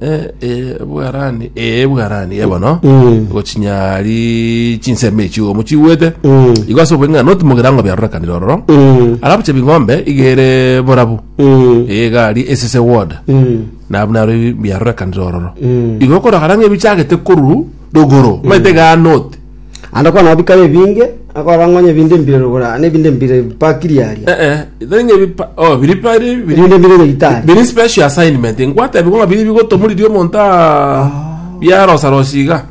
Eh, eh, bwarani eh, bwarani eh, bono Eh. gochinyari chinsemo echi omo chigwete Eh. igo ase obweng'a noti mogerango biarorekanire ororo Eh. arabuche bing'ombe igere borabu Eh. egari esese ward Eh. nabu naro biarorekanire ororo Eh. igo okoragara ng'a ebichagete koruru rogoro maete ganoti Naende okona nao bikare ebinge, akorora ng'a onye ebinto mbire rogoro aa, na ebinto mbire bipakiri aria. Eh, eh, itere ng'a ebipa- oh, biri pa- biri- biri- Ebinto mbire nyagetari. biri special assignment ngwatebiwa ng'a biri bigotomoririe omonto aa biarosarosia iga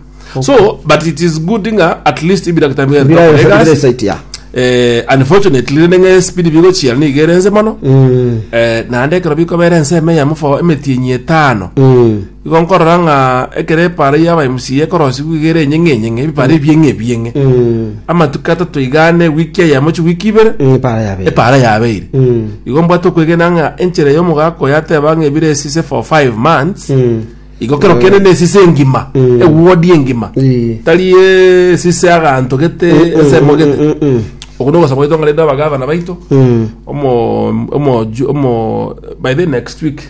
so but it is good ng'a at least ebidaktari biga Bira bikakora bira egasi. site ya. Eh, unfortunately rende ng'a espeed bigochiera niga ere ense mono Mm. Eh, naende ekero bikobera ensemo eyemo for emetienyi etano Mm. Igo nkorora ng'a ekero epaara y'abaMCA ekorosiwa iga ere enyeng'e enyeng'e, ebipaara ebieng'e ebieng'e. Amatuko atato iga ane, wiki eyemo chiwiki ibere, Epaara yabeire. epaara yabeire. Igo mbwate okwegena ng'a enchera y'omogaka oyo ateba ng'a ebire esise for five months, igo kero kende na esise engima, eward engima. Ii. Tari esise aganto gete ensemo gete. Okwo nogosaba gwaito ng'a rende abagavana baito, omo- omo- omoju- omo- by the next week,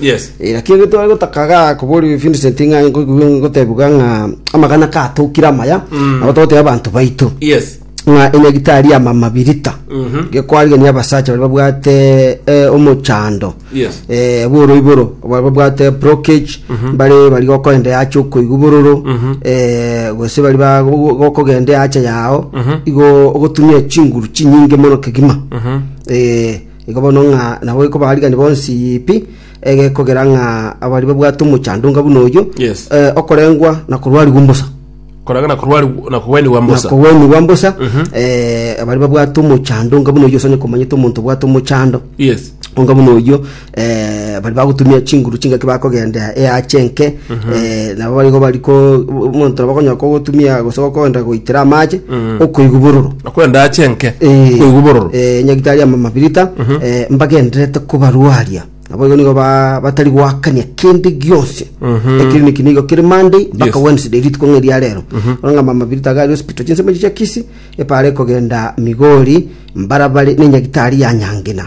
Yes. Eh, lakini ege tware gotakaga kobori Vincent ng'a ngo- ngo- ngotebiwa ng'a amagana katokire amaya Mm. nabo togoteba abanto baito Yes. ng'a enyagitari ya mama birita Mhm. gekwarigania abasacha bari babwate eh, omochando Yes. eh, boro iboro bari babwate blockage bari bari gokoenda yacha okoigwa bororo Mhm. eh, gose bari ba- go- go- gokogenda yacha yao Mhm. igo ogotumia chinguru chinyinge mono kegima Mhm. eh, Igo bono ng'a naboikwa abaarigani bonsi pi, egekogera ng'a abari babwate omochandunga buna oyio, Yes. eh, okorengwa na korwarigwa mbosa Koranga na korwari na kogwenigwa na mbosa. kogwenigwa mbosa eh, abari babwate omochandunga buna oyio osanye komanyete omonto obwate omochando Yes. onga buna oyio eh, bari bagotumia chinguru chingaki bakogendera eache enke Nabo barigo bari ko omonto nabo okonyora kogotumia gose gokoenda goitera amache okoigwa bororo. Okwenda ache enke Eh, koigwa bororo eh, nyagitari ama mabirita eh, mbagendererete kobarwaria naboigo nigo ba- batari goakania kende gionsi ekiriniki nigo kere monday mpaka Yes. wednesday rituko ng'a eria rero bono ng'a mamabirita iga ari hospital chinsemo echi chia kisi epara ekogenda migori mbarabare na enyagitari ya nyangina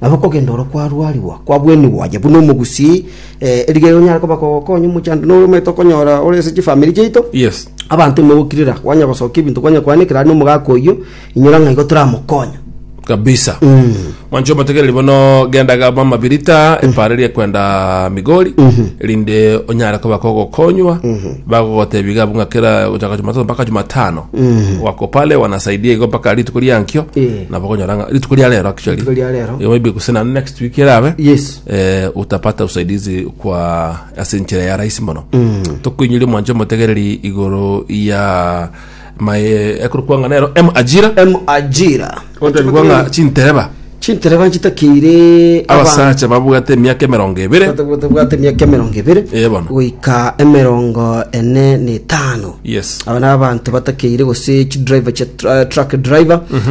Nabo okogenda oro kwarwarigwa, kwabwenigwa aye buna omogusii, eh, erigererio onyare koba kogokonya omochando, na oromanyete okonyora ore ase chifamiri chiaito. Yes. Abanto ime gokirera, kwanya gosokia ebinto, kwanya koanekera aria nomogaka oyio, inyora ng'a igo toramokonya. kabisa mwancho omotegereri bono genda gaba mabirita epara eria kwenda migori erinde onyare koba kogokonywa bagogotebi gabu ng'a kera gochaka jumatatu mpaka jumatano wako pale wanasaidia igo mpaka rituko riankio Eh. nabo konyora ng'a rituko ria rero actually Rituko ria rero. Eh, maybe gose na next week erabe Yes. eh, utapata usaidizi kwa ase enchera ya rahisi mono tokoinyoria mwancho motegereri igoro ya mae ekorokwa ng'a nero m ajira M ajira. otabigwa ng'a chintereba Chintereba chitakeire abasacha babwate emiaka emerongo ebere bwate miaka emerongo ebere Eh, bono. goika emerongo ene na etano yes aba na abanto batakeire gose chidriver cha tra- truck driver